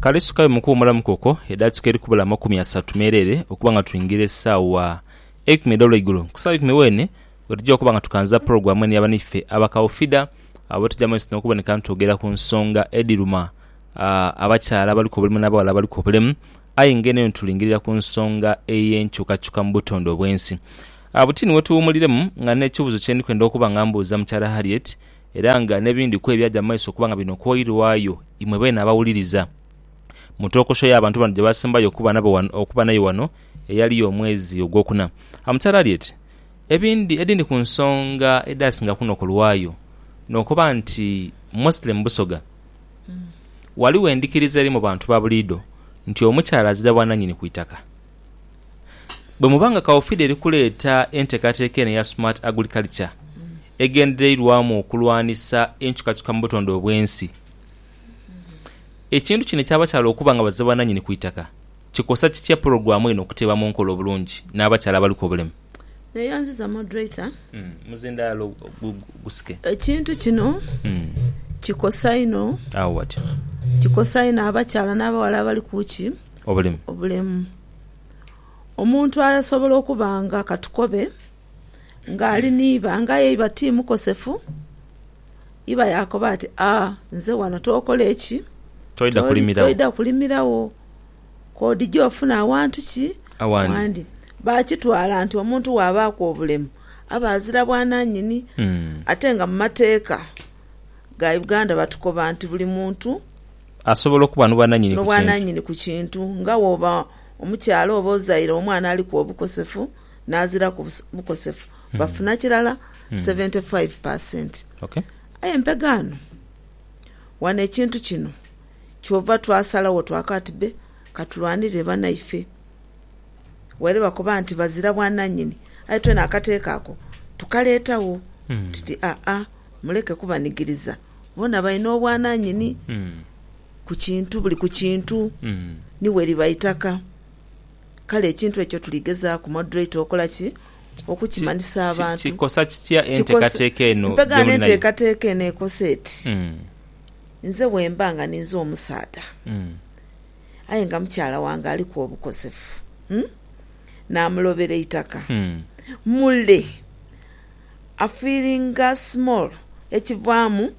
Kale isukayo mu kuwumulamu kwokwo edakika edhiri kubula amakumi asatu meereere okuba nga twingira esaawa eikumi edh'olweigulo. Ku saawa eikumi weene wetuja okuba nga tukanza pulogulaamu eno ya banaife Abakaufida abo tuja mu maiso n'okuboneka nitwogera ku nsonga edhiruma abakyala abaliku obulemu n'abaghala abaliku obulemu. Aye nga eno yona tulingirira ku nsonga ey'enkyukakyuka mu butonde obw'ensi. Buti ni wetuwumuliremu nga n'ekibuuzo kye ndi kwenda okuba nga mbuuza mukyala Harriet, Era nga n'ebindi ku ebyaja mu maiso okuba nga bino kwoirwayo, imwe beene abawuliriza, mu tokosho y'abantu bano gye baasembayo okuba nabo ghano, okuba naye ghano eyali y'omwezi ogwokuna. Amukyala ali ati, Ebindi, edindi ku nsonga edhaasinga kunokolwayo, n'okuba nti mostly mu Busoga, ghaligho endhikiriza eri mu bantu ba buliidho nti omukyala azira bwananyini ku itaka. Bwe muba nga Kaufida eri kuleeta enteekateeka eno eya Smart Agriculture egendereirwamu okulwanisa enkyukakyuka mu butonde obw'ensi, ekintu kino eky'abakyala okuba nga baze bananyini ku itaka kikosa kitya pulogulaamu eno okuteeba mu nkola obulungi n'abakyala abaliku obulemu? Neyanziza Moderator. Omuzindaalo gusike. Ekintu kino kikosa inho. Agho watyo. Kikosa inho abakyala n'abaghala abali ku ki? obulemu. Omuntu asobola okuba nga ka tukobe nga ali ni iba aye nga iba ti mukosefu, iba yaakoba ati, A, nze wano tookole ki? Toidha kulimiragho. Koodhije ofune awantu ki? Awandi. Baakitwala nti omuntu bw'abaaku obulemu aba azira bwananyini. Ate nga mu mateeka ga Uganda batukoba nti buli muntu... asobola okuba n'obwananyini ku kintu, nga woba omukyala oba ozaire omwana aliku obukosefu n'aziraku bukosefu bafuna kirala seventy five per cent. Aye mpegaano wano ekintu kino kyova twasalagho twaka ati be katulwanirire banaife waire bakoba nti bazira bwananyini aye twena akateeka ako tukaleetagho tuti aa muleke kubanigiriza. Bona balina obwananyini ku kintu, buli ku kintu ni weriba itaka. Kale ekintu ekyo tuligezaaku, Moderator, okola ki? Okukimanhisa abantu. Ki, ki, kikosa kitya enteekateeka eno Mpegaano gyemuli nayo? enteekateeka eno ekosa eti, nze bwemba nga ninze omusaadha, aye nga mukyala wange aliku obukosefu, namulobera eitaka, mule. a feelinga small ekivaamu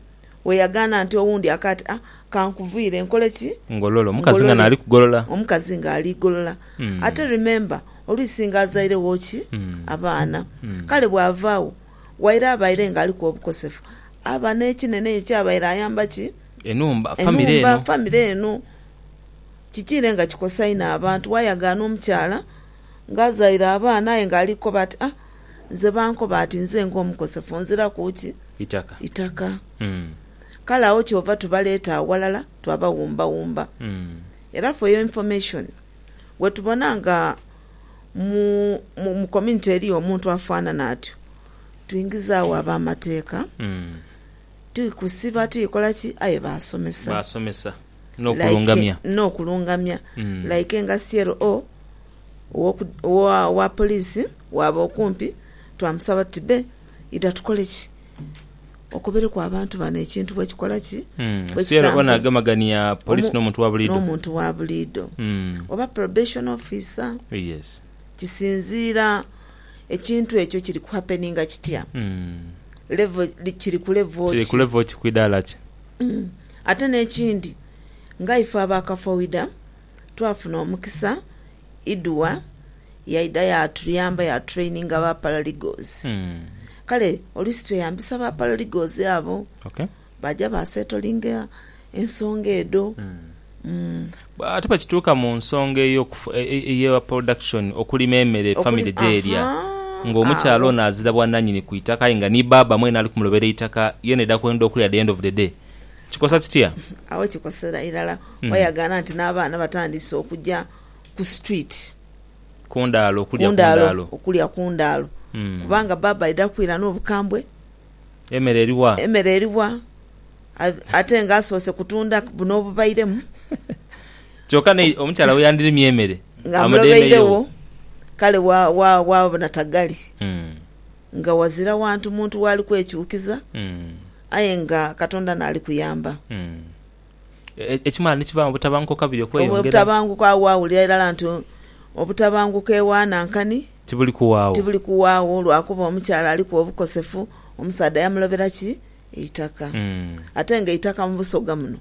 weyagaana nti owundi akaati a kankuviire nkole ki? Ngolole omukazi nga naali kugolola. Omukazi nga ali golola. Ate remember oluisi nga azairegho ki? Abaana. Kale bwava agho waire abaire nga aliku obukosefu aba nekinene eyo kyabaire ayamba ki? Enhumba, family eno. Enhumba, family eno. Kikiire nga kikosa inho abantu wayagaana omukyala nga azaire abaana aye nga ali kukoba ati a Nze bankoba ati nze ng'omukosefu nziraku ki? Itaka. Itaka. Kale agho kyova tubaleeta aghalala twabawumbawumba. Era for your information, wetubona nga mu, mu, mu community eliyo omuntu afanana atyo, twingizaagho ab'amateeka, ti kusiba, ti kola ki, aye basomesa. Basomesa. Like, N'okulungamya. n'okulungamya. Like nga CLO, owa poliisi waaba okumpi twamusaba tuti, Bbe, idha tukole ki? Okobereku abantu bano ekintu bwe kikola ki? Bwe kitambula n'omuntu wa buliidho oba probation officer. Kisinziira ekintu ekyo kiri ku happeninga kitya, kiri ku level ki. Ate n'ekindi nga ife aba kafowidha. twafuna omukisa Idua yaidha yaatuyamba yaatutraininga ba paralegals. Kale oluusi tweyambisa ba paralegals abo baaja baaseetolinga ensonga edho. Ate bwe kituuka mu nsonga eya production, okulima emere famire gyerya, ng'omukyala ono azira bwananyini ku itaka aye nga ni baaba mwene ali kumulobera eitaka, yeena aidha kwenda okulya at the end of the day. Kikosa kitya? Agho kikosera irala wayagaana nti n'abaana batandiise okuja ku situwiti. Ku ndaalo, okulya ku ndaalo. Okulya ku ndaalo. Kubanga bbaabba aidha kwira n'obukambwe. Emere eri wa? Emere eri wa? Ate nga asoose kutunda buno obubairemu. Kyoka n'eyo omukyala we yandirimye emere. Nga amulobeiregho, kale waabona taghali. Nga wazira wantu muntu w'ali kwekyukiza. Aye nga Katonda n'ali kuyamba. Mm. Ekimala ni kiva obutabanguko kabiri okweyongera. Obutabanguko agho waawulira irala nti obutabanguko ewa Nankani. Tibuli kuwaagho. Tibuli kuwaagho lwa kuba omukyala aliku obukosefu, omusaadha yamulobera ki? Eitaka. Mm. Ate nga eitaka mu Busoga muno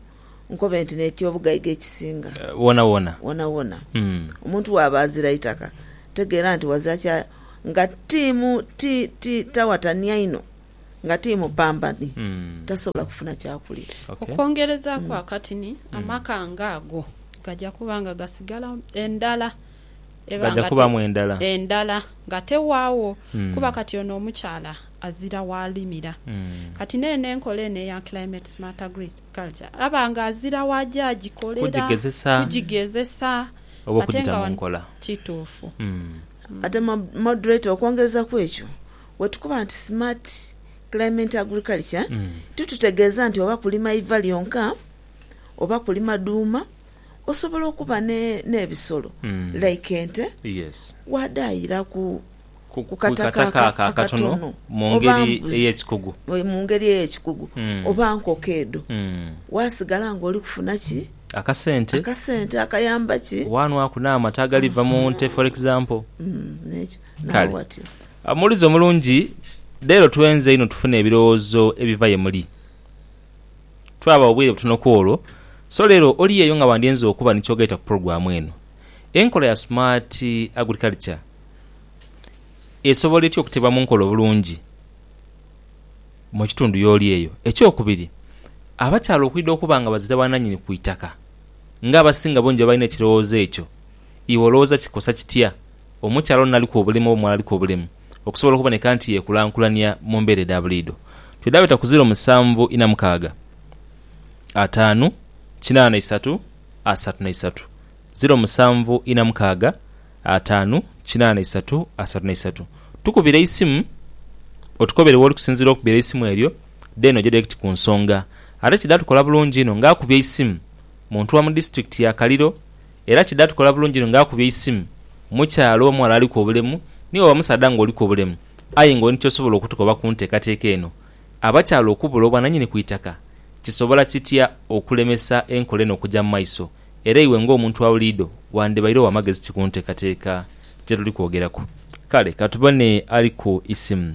nkobe nti n'eky'obugaiga ekisinga. Wonawona. Wonawona. Mm. Omuntu bw'aba azira itaka, tegeera nti wazira kya nga tiimu ti, ti, tawatania inho. nga ti mupambani tasobola kufuna kyakulya. Okwongerezaaku akatini, amaka ng'ago gaja kuba nga gasigala endala ebanga endala nga tewaagho kuba kati ono omukyala azira waalimira. Kati n'eno enkola eno eya Climate Smart Agriculture aba nga azira waaja agikolera, kugigezesa ate nga wano. Kituufu. Ate Moderator okwongereza ku ekyo, Wetukoba nti Smart Climate Agriculture titutegeeza nti oba kulima iva lyonka oba kulima dhuuma, osobola okuba n'ebisolo like ente waadhaayiraku ku kataka ako akatono oba mbuzi mu ngeri ey'ekikugu oba nkoko edho waasigala ng'oli kufuna ki? Akasente akayamba ki? Waanwaku n'amata agaliva mu nte for example. Kale omuwulize omulungi, leero twenze inho tufune ebirowoozo ebiva ye muli. Twabagho bwire butono ku olwo, so leero oli eyo nga wandyenze okuba ni ky'ogaita ku pulogulaamu eno. Enkola ya Smart Agriculture esobola etya okuteebwa mu nkola obulungi mu kitundu y'oli eyo? Ekyokubiri, abakyala okwidha okuba nga bazira bananyini ku itaka, ng'abasinga bungi babalina ekirowoozo ekyo, iwe olowooza kikosa kitya? omukyala ono naliku obulemu oba omuwala aliku obulemu okusobola okuboneka nti yekulankulania mu mbeera edha buliidho. Twidhaabeta ku ziro musanvu ina mukaaga, ataanu, kinaana isatu, asatu na isatu, ziro musanvu ina mukaaga, ataanu, kinaana isatu, asatu na isatu. Tukubire eisimu otukobere w'oli kusinziira okubira eisimu eryo then oje direct ku nsonga. Ate kidha tukola bulungi inho nga akubye eisimu muntu wa mu disitulikiti ya Kaliro, Era kidha tukola bulungi nga akubye eisimu mukyala oba mughala aliku obulemu ni waba musaadha nga oliku obulemu aye nga olina kyosobola okutukoba ku nteekateeka eno. Abakyala okubula obwananyini ku itaka kisobola kitya okulemesa enkola eno okuja mu maiso era iwe nga omuntu wa buliidho wandibaire owa magezi ki ku nteekateeka gyetuli kwogeraku? Kale katubone ali ku isimu.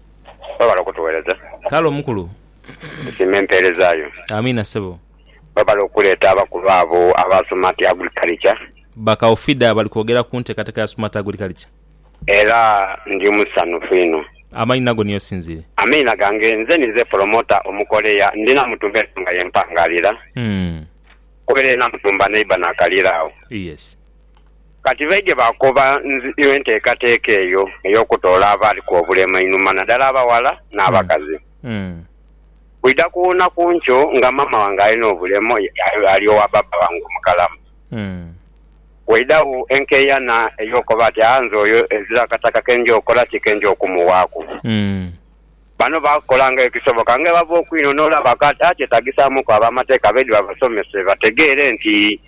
Webale okutuwereza. Kale omukulu. Tusiima empeereza yo. Amiina ssebo. Webale okuleeta abakulu abo aba Sumati Agriculture. Ba Kaufida bali kwogera ku nteekateeka ya Sumati Agriculture. Era ndi musanhufu inho. Amanhina go niyo osinziire. Amiina gange. Nze ninze Pulomota Omukorea. Ndi Namutumba ensonga ye mpangaalira. Nkubereire Namutumba neighbour Nakalira agho. Yes. Kati baidhie baakoba nziu enteekateeka eyo ey'okutoola abaaliku obulemu einhuma, nadala abaghala n'abakazi. Kwidha kuwuuna ku nkyo nga maama wange alina obulemu ali owa baaba wange omukalamu. Waidhagho enkeeyana ey'okoba ati, Aa, nze oyo ezira akataka ke nja okola ki ke nja okumuwaaku? Bano baakola nga ekisoboka nga bwebava okwinhonhola bakaata kyetagisaamuku ab'amateeka baidhie babasomese bategeere nti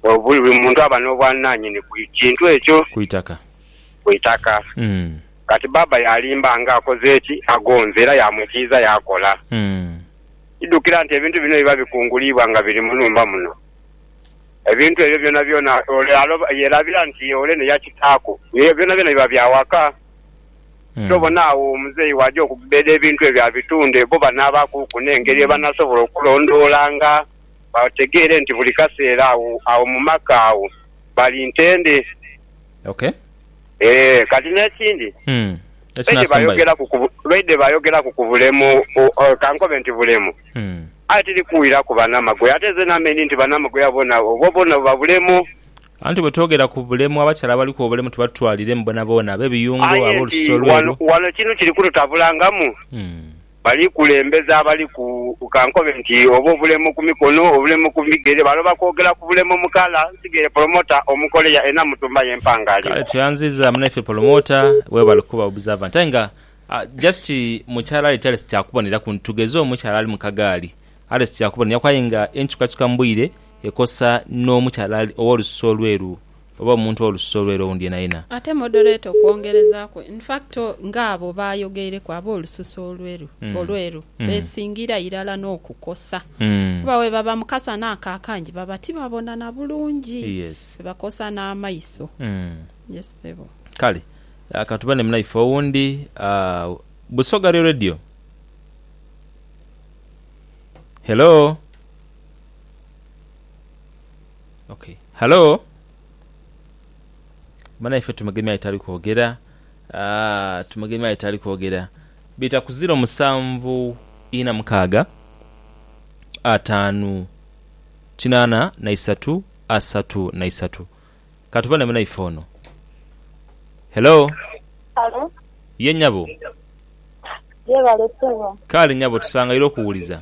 Buli muntu aba n'obwananyini ku kintu ekyo. Ku itaka. Ku itaka. Kati baaba yaalimba nga akoze ki? Agonze era yaamwikiiza yaakola. Idhukira nti ebintu bino biba bikunguliibwa nga biri mu nhumba muno. Ebintu ebyo byonabyona ole yerabira nti ole ni ya kitaaku. Ebyo byonabyona biba bya waka. Kyobona agho omuzeeyi bw'aja okugbeeda ebintu ebyo abitunde, bo banaabakuuku n'engeri ye banasobola okulondoolanga. bategeere nti buli kaseera agho, agho mu maka agho bali ntende. Ok. Ee, kati n'ekindi, Hmm. Eki lwaidhe n'asembayo. bayogeraku ku bu- lwaidhe bayogeraku ku bulemu, o- o- ka nkobe nti bulemu, Hmm. aye tiri kuwiraku banamagoye. Ate nze namenye nti banamagoye boona, obwo bwoona buba bulemu. Anti bwe twogera ku bulemu, abakyala abaliku obulemu tubatwaliremu boonaboona, ab'ebiyungo, Aye nti ab'olusu olweru. wano, wano kinu kiri kututabulangamu. Hmm. Bali kulembeza abali ku, ka nkobe nti, oba obulemo ku mikono, obulemo ku bigere, baloba kwogera ku bulemo mu kala. Nsigaire Polomota Omukorea e Namutumba ye Mpangali. Kale tweyanziza munaife polomota webale kuba observant aye nga just mukyala ali ti alesi kyakuboneraku tugeze omukyala ali mukagaali alesi kyakuboneraku aye nga enkyukakyuka mubwire ekosa nomukyala owolususu olweru Oba omuntu olususu olweru owundi yenayena. Ate moderator okwongerezaaku, in fact nga abo baayogeireku ab'olususu olweru olweru besingira irala n'okukosa kuba bwebaba mu kasana ako akangi baba tibabona na bulungi, bakosa n'amaiso. Yes ssebo. Kale ka tube ne munaife owundi. Busoga Real Radio, hello? Ok hallo banaife tumugemye aye tali kwogera aah tumugemye aye tali kwogera bita ku ziro musanvu ina mukaaga ataanu kinaana na isatu asatu na isatu katubone munaife ono hello Halo, ye nyabo yebale sebo. kale nyabo tusangaire okuwuliza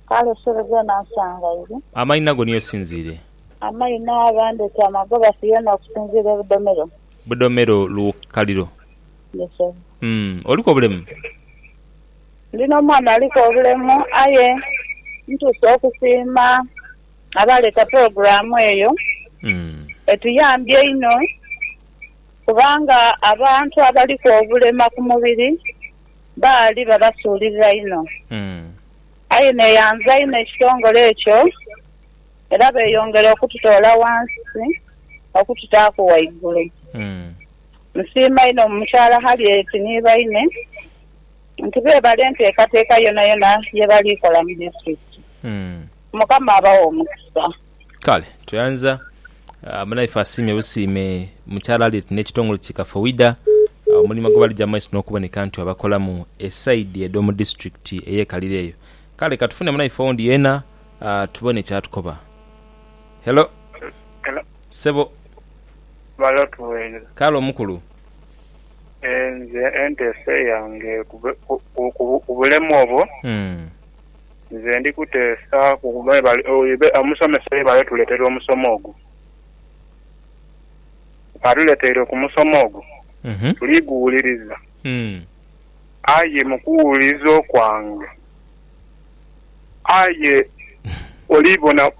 Kale esubi ghe nasangaire. Amaina go niyo sinziire. Amaina ghandeeta amagoba Siona okusinziira e Budomero. Budomero lukaliro. Yes sir. Umm oliku obulemu? Ndi n'omwana aliku obulemu aye ntuuse okusiima abaaleeta pulogulaamu eyo. Etuyambye einho kubanga abantu abaliku obulema ku mubiri baali babasuulirira inho. Aye neyanza inho ekitongole ekyo era beyongera okututoola wansi okututaaku waigulu. Nsiima inho Mukyala Harriet ni baine nti beebala enteekateeka yonayona ye bali kola mu disitulikiti. Mukama abawe omukisa. Kale tweyanza munaife asiimye busiime mu kyalaani n'ekitongole ki Kafowida omulimo gwe balija mu maiso n'okuboneka nti babakolamu esaidi edho mu disiturikiti eyekalire eyo. Kale katufune munaife owundi yeena tubone kyatukoba. Hello. Hello. Ssebo. Balo tuweire. Kale omukulu. Nze enteesa yange ku bulemu obwo. Nze ndi kuteesa ku mwebale omusomesa yebale tuletera omusomo ogwo. Atuleteire ku musomo ogwo tuli guwuliriza aye mu kuwuliriza okwange aye oli bona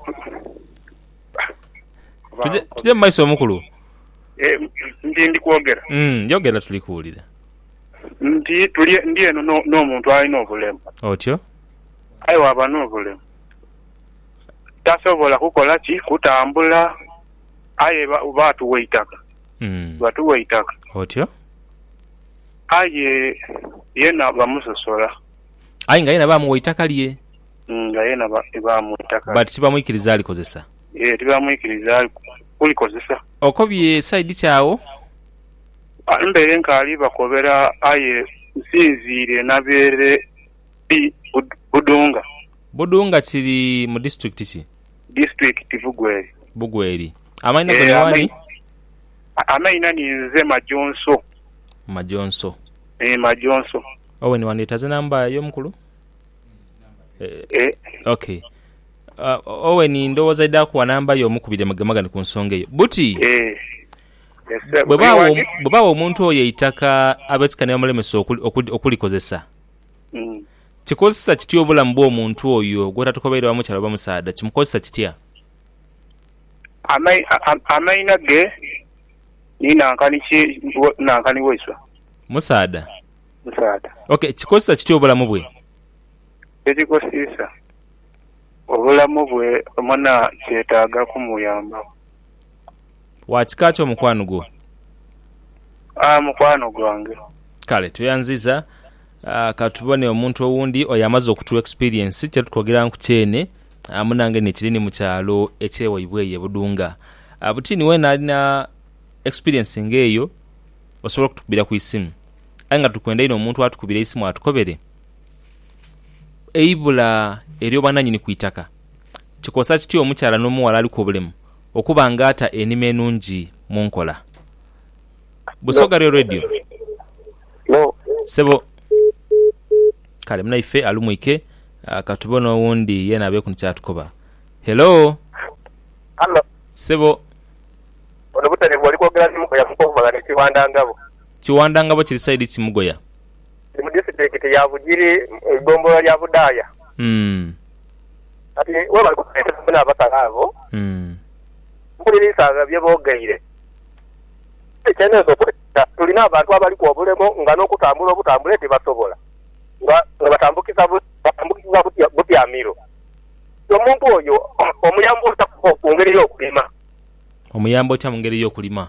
Tuje mu maiso mukulu. Nti ndi kwogera? Yogera tuli kuwulira. Nti, Tuli ndi eno no, n'omuntu alina obulemu. Otyo. Aye bw'aba n'obulemu, tasobola kukola ki? Kutambula. Aye ba, baatuwa eitaka. Mm. Baatuwa eitaka. Otyo. Aye yena bamusosola. Aye nga yena baamuwa eitaka lye. Mm, nga yena ba, baamuwa eitaka lye. But tibamwikiriza alikozesa. Yee, tibamwikiriza ali, kulikozesa. Okobye side ki agho? Mbaire nkaali bakobera aye nsinziire nabeere di Budunga. Budunga kiri mu disitulikiti ki? Disitulikiti Bugweri. Bugweri. Amaina go ni wani? Amaina ni nze Majonso. Majonso. Eeh Majonso. Owen wandhetaza enamba yo mukulu? Eeh ok Owen ndhowooza aidha kuwa namba yo omukubire mugemagane ku nsonga eyo. Buti! Eeh. Bwe bagha omuntu oyo eitaka ab'ekika ni bamulemesa okulikozesa, kikozesa kitya obulamu bw'omuntu oyo gw'otatukobaire oba mukyala oba musaadha? Kimukozesa kitya? Amaina ge ni nankani ki nankani waiswe? Musaadha. Musaadha. Ok, kikozesa kitya obulamu bwe? Kyekikozesa obulamu bwe, mwena kyetaaga kumuyambaku. Wa kika ki omukwano gwo? Aa, mukwano gwange. Kale, tweyanziza. Aa, ka tubone omuntu owundi oyo amaze okutuwa experience kye tukogeranku kyene. Aa, munange nikiri ni mu kyalo ekye waibwe eyo e Budunga. Aa, buti ni wena alina experience nga eyo, osobola okutukubira ku isimu. Aye nga tukwenda inho omuntu atukubire eisimu atukobere eibula eryobwananyini ku itaka. Kikosa kitya omukyala n'omughala aliku obulemu okuba nga ata enima enungi mu nkola? Busoga lyo Radio. Sebo. Kale munaife alumwike ka tubone owundi yena abeku ni kyatukoba. Hello. Hallo. Sebo. Ono Buterevu oli kwogera ni Mugoya Mukovu Magana e Kiwandangabo. Kiwandangabo kiri side ki Mugoya? Ndi mu disiitulikiti ya Bugiri mu igombolola lya Budaaya. Kati webali kutuleeteraku n'abakali abo, mpuliriisagha bye boogeire. Aye kye ninsobola okwekebera, tuli n'abantu abaliku obulemo nga n'okutambula obutambule tibasobola, nga batambukiza batambukiza butyamiro. Kati omuntu oyo omuyamba otya mu ngeri y'okulima? Omuyamba otya mu ngeri y'okulima?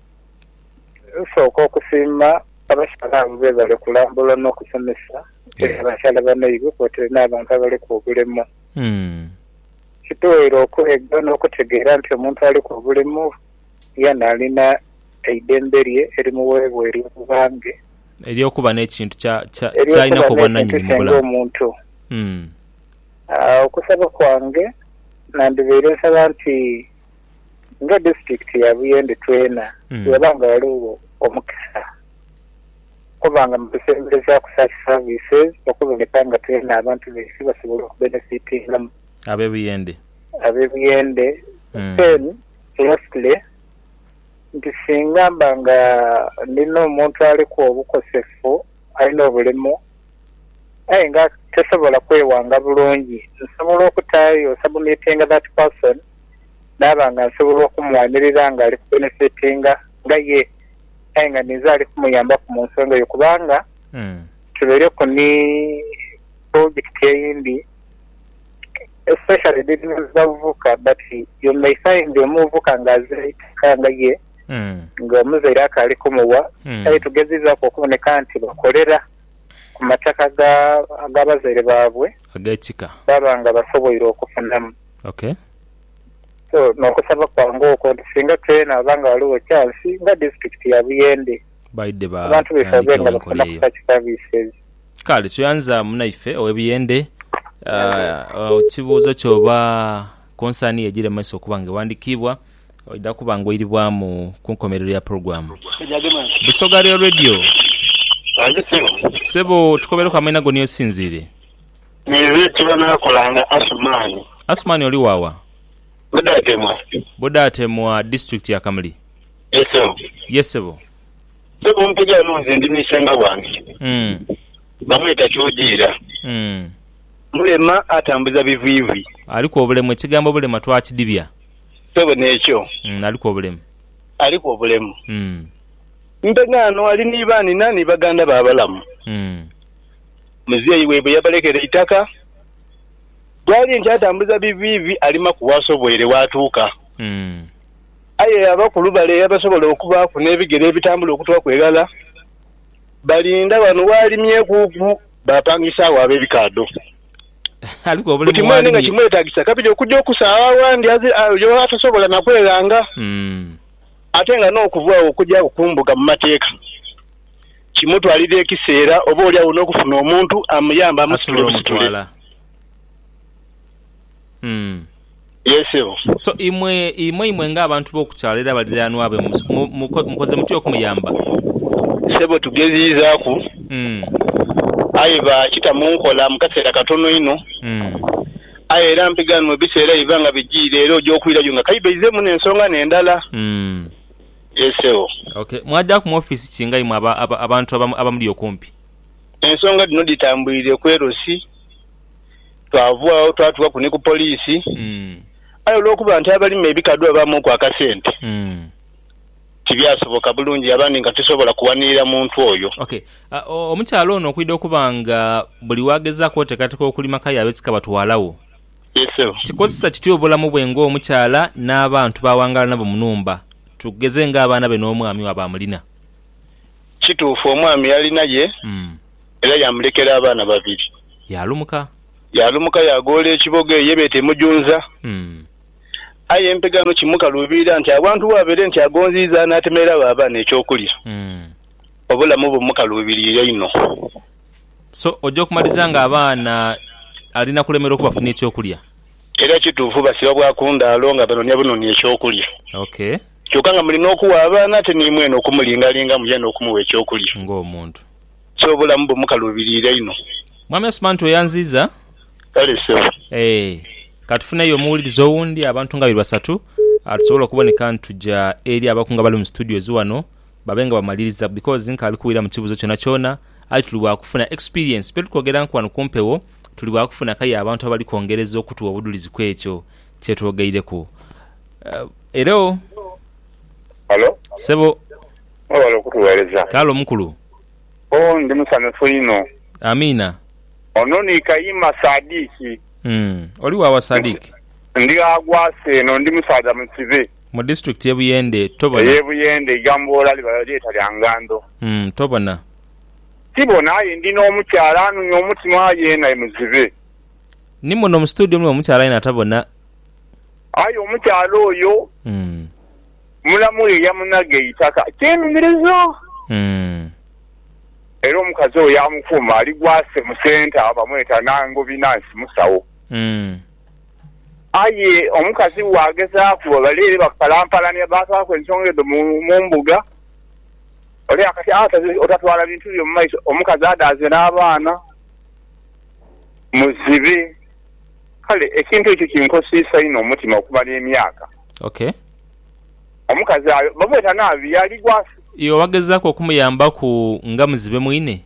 Nsooka okusiima abasaadha abo bebale kulambula n'okusomesa tuli abasaadha banaibwe kwotaire n'abantu abaliku obulemu. Kituweire okwega n'okutegeera nti omuntu aliku obulemu yeena alina eidembe lye erimuweebwa ery'okuba nge. Ery'okuba n'ekintu ky'alinaku obwananyini mu bulamu. Omuntu. Okusaba kwange nandibaire nsaba nti ng'edisiturikiti ya Buyende twena bwewaba nga ghaligho omukisa okuba nga mutusemberezaaku such services okuboneka nga twena abantu baife basobole okubenefitingamu, Ab'e Buyende. ab'e Buyende, then lastly nti singa mba nga ndina omuntu aliku obukosefu alina obulemu aye nga tasobola kwewanga bulungi nsobola okutaayo, submitting that person. naaba nga nsobola okumwanirira nga ali kubenefitinga nga ye aye nga ninze ali kumuyambaku mu nsonga eyo kubanga tubaireku ni pulojekiti eyindi especially dealing with bavubuka but you may find omuvubuka nga azira eitaka nga ye nga omuzaire akaali kumuwa aye tugezizaaku okuboneka nti bakolera ku mataka ga abazaire baabwe baaba nga basoboire okufunamu. Ok. So n'okusaba kwange okwo nti singa kyena oba nga ghaligho chance nga disitulikiti ya Buyende Baidhe abantu baife babe nga batandikewo enkola bafunaku eyo. such services. Kale tuyanza munaife owe Buyende. Ekibuuzo kyo oba concern yo egyire mu maiso okuba nga ewandikiibwa, oidha kuba nga oiribwamu ku nkomerero ya program. Busoga Real Radio. Ssebo tukobereku amaina go ni yosinziire. Naire tibanaakolanga Asumani. Asumani oli waawa? Budaatemwa. Budaatemwa disitulikiti ya Kamuli. Ye ssebo. Ye ssebo. Ssebo ompeje ghano nze ndi n'isengha wange. Bamweta Kyojiira. Mulema atambuza bivwivwi. Aliku obulemu. Ekigambo bulema twakidibya. Ssebo n'ekyo. Aliku obulemu. Aliku obulemu. Mpe ghano ali ni baanina ni baganda be abalamu. muzei waibwe yabalekera eitaka, bwali nti atambuza biviivi alima ku waasoboire waatuuka. Aye abakulu bale eyabasobola okubaaku n'ebigere ebitambula okutwaku eghala, balinda ghano waalimyekuuku baapangisaagho ab'ebikaadho. Buti mwene nga kimwetaagisa kabiri okuja okusaagha aghandhi yo atasobola na kweghanga, ate nga n'okuva agho okuja agho ku mbuga mu mateeka. Kimutwalira ekiseera oboolyawo n'okufuna omuntu amuyambe amusitule busitule. Asobola omutwala. Yee, ssebo. So, imwe, imwe, imwe nga abantu b'oku kyalo era baliraanwa be, mu, mu, mu, mukoze mutya okumuyamba? Ssebo, tugeziizaaku, aye baakita mu nkola mu kaseera katono inho. Aye era mpiganwa ebiseera biba nga bijiire era oja okwirayo nga kaibe aizeemu n'ensonga n'endala. Yee sebo. Ok, mwadhaaku mu ofiisi ki nga imwe abantu abamuli okumpi? Ensonga dhino dhitambwire ku LC, twava agho twatuukaku ni ku poliisi. Aye olw'okuba nti abalima ebikadhu babaamuku akasente, tibyasoboka bulungi yaba ndi nga tisobola kuwanirira muntu oyo. Ok, omukyala ono okwidha okuba nga buli waagezaaku oteekateeka okulima k'aye ab'ekika batwala wo? Kikozesa kitya obulamu bwe ng'omukyala n'abantu b'awangaala nabo mu nhumba? Tugeze ng'abaana be n'omwami waabwe amulina. Kituufu omwami yalina ye era yaamulekera abaana babiri. Yaalumuka. Yaalumuka yaagoola ekibogo eyo ye beeta emujunza. Aye empega ghano kimukaluubiira nti awantu w'abaire nti agonziiza anaatemerera agho abaana eky'okulya, obulamu bumukaluubiriire inho. So oja okumaliriza nga abaana ali na kulemerwa okubafunira eky'okulya. Era kituufu basiba bwa ku ndaalo nga banonia bunonia eky'okulya. Ok. Kyoka nga mulina okugha abaana ate n'imwene okumulingalingamu yaani okumugha eky'okulya. Ng'omuntu. So obulamu bumukaluubiriire inho. Mwami Asumantu weyanziiza. Kale ssebo. Eeh. Ka tufuneyo omuwuliriza owundi abantu nga babiri basatu tusobole okuboneka nituja eri abakungu abali mu situdiyozi wano. babe nga bamaliriza because nkaali kuwulira mu kibuzo kyona kyona aye tuli bwa kufuna experience bye tuli kwogera nku wano ku mpewo tuli bwa kufuna kaye abantu abali kwongereza okutuwa obudulizi ku ekyo kye twogeireku Hello Halo, Sebo mwebale okutughereza. Kaale omukulu Oh, ndi musanhufu inho. Amiina Ono ni Kayima Saadiki. Umm, oli wa wa Saadiki? Ndi gha Gwasa eno, ndi musaadha mukibe. Mu district ye Buyende tobona. Eye Buyende igamboola liba lyeta lya Ngando. Uhmm tobona. Tibona aye ndi nomukyala anumya omutima aye yena ye muzibe. Ni muno mu studio mulimu omukyala yena atabona. Aye omukyala oyo mulamu ye yamunaga eitaka kyenumiriza. Uhmm. Era omukazi oyo yamukuuma ali gwa se mu centre bamweta Nangobi Nansi musawo. Uhmm. Aye omukazi bw'aghezaaku bali ere bakukalampalania, baatwalaku ensonga edho mu mbuga. Ole akati aataze otatwala bintu byo mu maiso, omukazi adaaze n'abaana, muzibe. Kale ekintu ekyo kinkosiisa inho omutima okumala emyaka. Ok. Omukazi ayo bamweta Naabi, yaaligwa nsi. Iwe waghezaaku okumuyambaku nga muzibe mwine?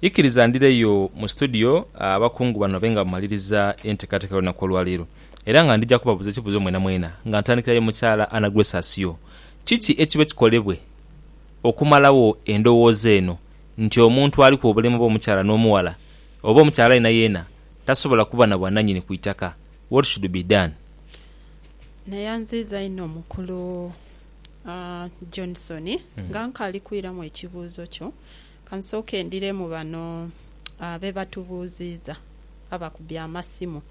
Ikiriza ndhireyo mu situdiyo abakungu bano babe nga bamaliriza enteekateeka y'olunaku olwaleero era nga ndhija kubabuuza ekibuuzo mwenamwena nga ntandikirayo mukyala Anna Grace Asio. Kiki ekibe kikolebwe okumalagho endowooza eno nti omuntu aliku obulemu oba omukyala n'omughala oba omukyala yenayeena tasobola kuba na bwananyini ku itaka? What should be done? Neyanziiza inho mukulu Johnson. Nga nkaali kwiramu ekibuuzo kyo, Ka nsooke ndhiremu bano be batubuuziiza abakubye amasimu.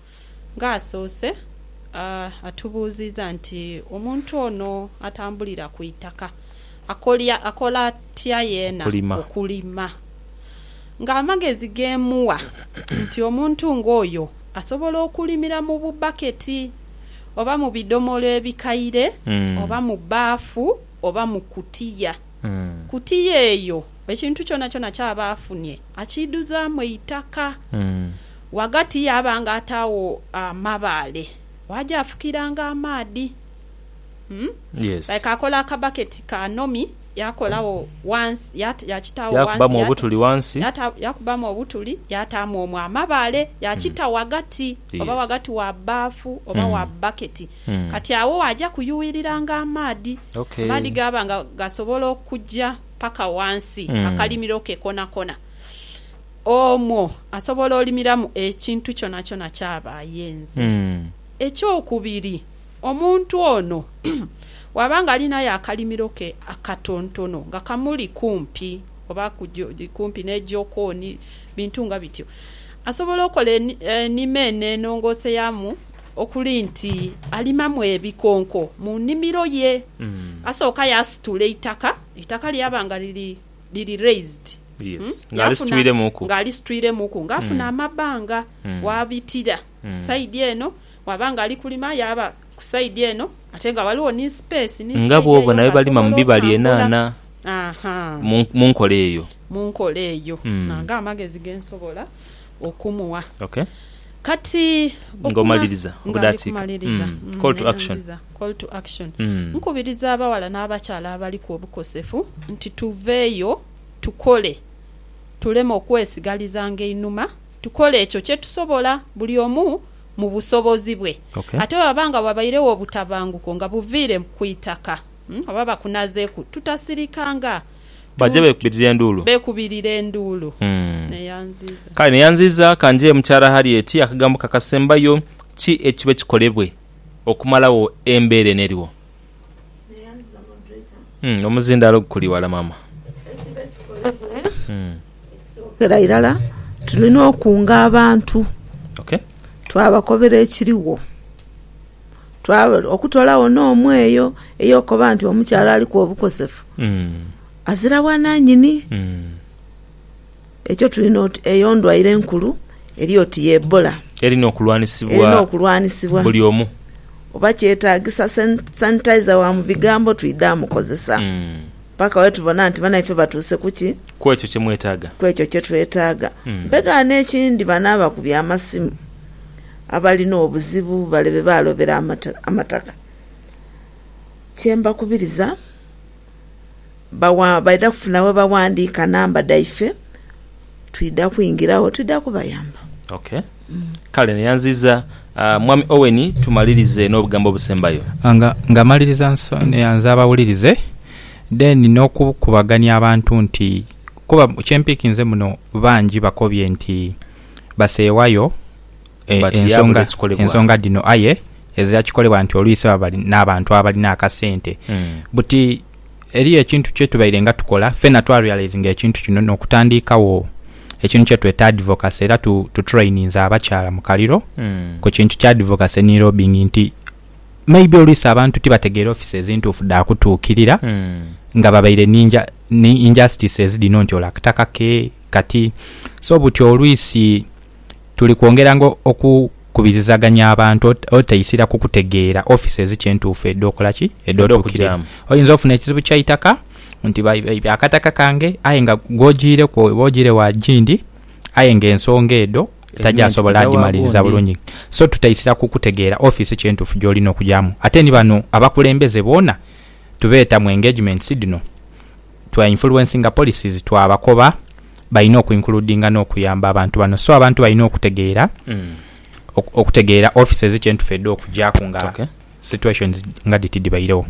Ng'asoose atubuuziiza nti, Omuntu ono atambulira ku itaka akola atya yeena okulima? Ng'amagezi ge mmuwa nti omuntu ng'oyo asobola okulimira mu bubbaketi oba mu bidhomolo ebikaire oba mu bbaafu oba mu kutiya. ku tiya eyo, ekintu kyonakyona ky'aba afunye akiidhuzaamu eitaka. Ghagati yaabanga ataagho amabaale gh'aja afukiranga amaadhi. Like akola akabaketi ka nomi yaakolagho wansi, yaakitaagho wansi, yaakubamu obutuli yaataamu omwo amabaale, yaakita ghagati, oba ghagati wa bbafu oba wa bbaketi. Kati agho waaja kuyuuiriranga amaadhi. Amaadhi gaaba nga gasobola okuja paka ghansi akalimiro ke konakona. Omwo asobola olimiramu ekintu kyonakyona ky'aba ayenze. Ekyokubiri, omuntu ono bw'aba nga alinayo akalimiro ke akatontono nga kamuli kumpi oba kumpi n'ejokooni, bintu nga bityo, asobola okola enima eno enongoose yaamu. Okuli nti alimamu ebikonko mu nimiro ye. Asooka yaasitula eitaka, eitaka lyaba nga liri, liri raised. Yes. Nga Yaafuna, alisitwiremuku. nga alisitwiremuku, nga afuna amabanga waabitira side eno, bwaba nga ali kulima yaaba ku side eno ate nga ghaligho ni space ni Nga side bw'oba eyo nayo balima mu ng'asobola bibala otambula. enhaanha, Aha. mu, mu nkola eyo. Mu nkola eyo. Nange amagezi ge nsobola. okumugha. Kati, okuma, nga ndi kumaliriza, neghandiza, call to action, nkubiriza abaghala n'abakyala abaliku obukosefu nti tuveeyo tukole, tuleme okwesigalizanga einhuma, tukole ekyo kye tusobola, buli omu mu busobozi bwe. Ate bwebaba nga wabairegho obutabanguko nga buviire ku itaka oba bakunazeeku, tutasirikanga. Baja beekubirira enduulu. Beekubirira enduulu. Neyanziiza. Kale neyanziiza ka nje Mukyala Harriet, akagambo ke akasembayo ki ekibe kikolebwe okumalagho embeera eno eriwo? Neyanziiza Moderator. Omuzindaalo guli wala maama. Ekibe kikolebwe, ekisookera irala tulina okunga abantu twabakobera ekirigho. okutolawo n'omu eyo ey'okoba nti omukyala aliku obukosefu azira bwananyini. Ekyo tulina oti eyo ndwaire nkulu eri oti ye Ebola erina okulwanisibwa buli omu, oba kyetagisa sanitaiza wa mu bigambo twidha mukozesa paka wetubona nti banaife batuuse kuki? Kwekyo kyemwetaaga, kwekyo kyetwetaaga. Mpegaano ekindi bano abakubya amasimu Abalina obuzibu bale be baalobera amataka. Kye mbakubiriza, baidha kufuna we baghandiika namba dhaife, twidha kwingiragho twidha kubayamba. Ok. Kale neyanziiza Mwami Owen tumalirize n'obugambo obusembayo. Nga maliriza neyanza abawulirize then n'okukubagania abantu nti kuba kye mpiikinze muno bangi bakobye nti baseewayo. e- But ensonga, yaabula ekikolebwa. ensonga dhino aye ezira kikolebwa nti oluisi baba bali n'abantu abalina akasente Mm. buti eriyo ekintu kyetubaire nga tukola fena twarealizinga ekintu kino n'okutandiikagho ekintu kyetweta advocacy era tu, tu traininze abakyala mu kaliro Mm. ku kintu kya advocacy ni lobbying nti maybe oluisi abantu tibategeera offices ntuufu dha kutuukirira Mm. nga babaire ni nja- ni injustices dhino nti olwo akataka ke kati so buti oluisi tuli kwongeranga okukubirizaganya abantu otaisira ku kutegeera offices ki entuufu edh'okola ki, edh'otuukirira. Oyinza ofuna ekizibu kya itaka nti baibye akataka kange aye nga gw'ojiireku oba ojiire wa Gindi aye nga ensonga edho tagyasobola dhimaliriza bulungi. So tutaisira ku kutegeera office ki entuufu gy'olina okujaamu. Ate ni bano abakulembeze boona tubeeta mu engagements dhino. Twa influencinga policies twa bakoba balina oku includinga no kuyamba abantu bano so abantu balina okutegeera okutegeera offices kye ntufu edha okugyaku nga situations nga dhiti dhibairegho.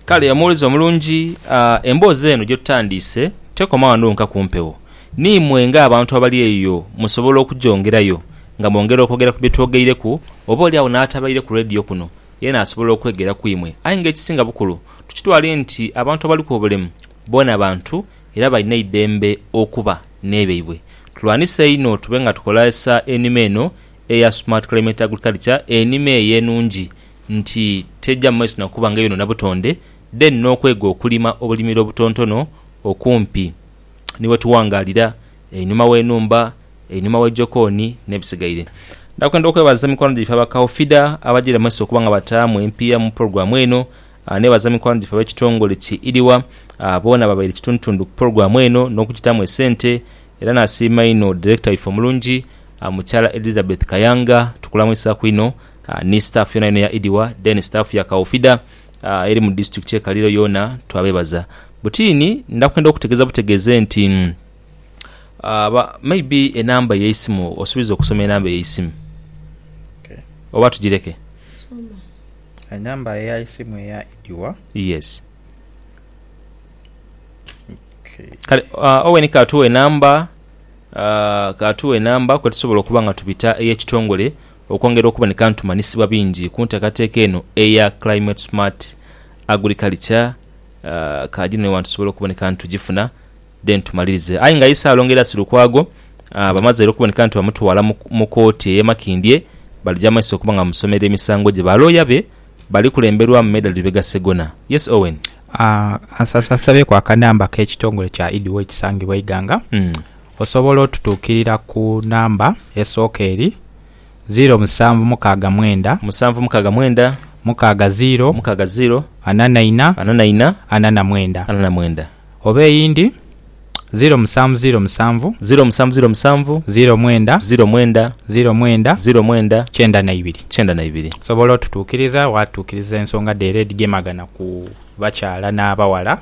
Kale omuwulize omulungi, emboozi eno gyetutandiise tekoma wano wonka ku mpewo. Niimwe nga abantu abali eyo musobola okugyongerayo nga mwongera okwogera ku bye twogeireku oba oli agho n'atabaire ku radio kuno Yena asobola okwegera ku imwe. Aye nga ekisinga bukulu, tukitwale nti abantu abaliku obulemu boona bantu era balina eidembe okuba n'ebyaibwe. Tulwanise einho tube nga tukozesa enima eno eya Smart Climate Agriculture, enima eyo enungi nti teja mu maiso na kuba nga eyonoona butonde, then n'okwega okulima obulimiro obutontono okumpi ni wetuwangaalira. einhuma w'enhumba, einhuma wa jokooni, n'ebisigaire. Ndakwenda okwebaza mikwano gyaife aba Kaufida abajaire mu maiso okuba nga bataamu empiiya mu pulogulaamu eno. Neebaza mikwano gyaife ab'ekitongole ki IRIWA boona ababaire kitundutundu ku pulogulaamu eno n'okugitaamu esente. Era naasiima inho direkita waife omulungi Mukyala Elizabeth Kayanga, tukulamwisaku inho, ni sitaafu yoonayoona eya IRIWA, then sitaafu ya Kaufida eri mu disitulikiti y'e Kaliro yoona twabeebaza. Butiini, ndakwenda okutegeeza butegeeze nti. Maybe enamba yeisimu osubiza okusoma enamba yeisimu oba tujireke. Enamba yeisimu eya ediwa. Yes kale Owen katuwe enamba katuwe enamba kwetusobola okuba nga tubita eyekitongole okwongera okuboneka nti tumanyisibwa bingi kuntekateka eno eya climate smart agriculture kajino ewantu tusobole okuboneka nti tujifuna. then tumalirize. Aye nga Isaalo nga era si Lukwago, bamaze era okuboneka nti bamutwala mu kooti ey'e Makindye balija mu maiso okuba nga bamusomerera emisango gye. Ba looya be bali kulemberwamu Medard Lubega Ssegona. Yes Owen. Nsabyeku akanamba k'ekitongole kya Idiwa ekisangibwa e Iganga. Osobola otutuukirira ku namba esooka eri, ziiro musanvu mukaaga mwenda, Musanvu mukaaga mwenda, mukaaga ziiro, mukaaga ziiro, ana na ina, ana na ina, ana na mwenda. ana na mwenda. Oba eyindi, ziro musanvu ziro musanvu. Ziro musanvu ziro musanvu. Ziro mwenda. Ziro mwenda. Ziro mwenda. Ziro mwenda. Kyenda na ibiri. Kyenda na ibiri. Osobola otutuukiriza waatuukiriza ensonga dheero edhigemagana ku bakyala n'abaghala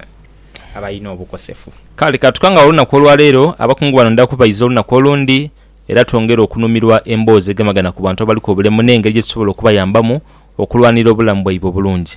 abalina obukosefu? Kale ka tukangaghe olunaku olwa leero. Abakungu bano ndha kubaiza olunaku olundi era twongere okunhumirwa emboozi egemagana ku bantu abaliku obulemu n'engeri gye tusobola okubayambamu okulwanirira obulamu bwaibwe obulungi.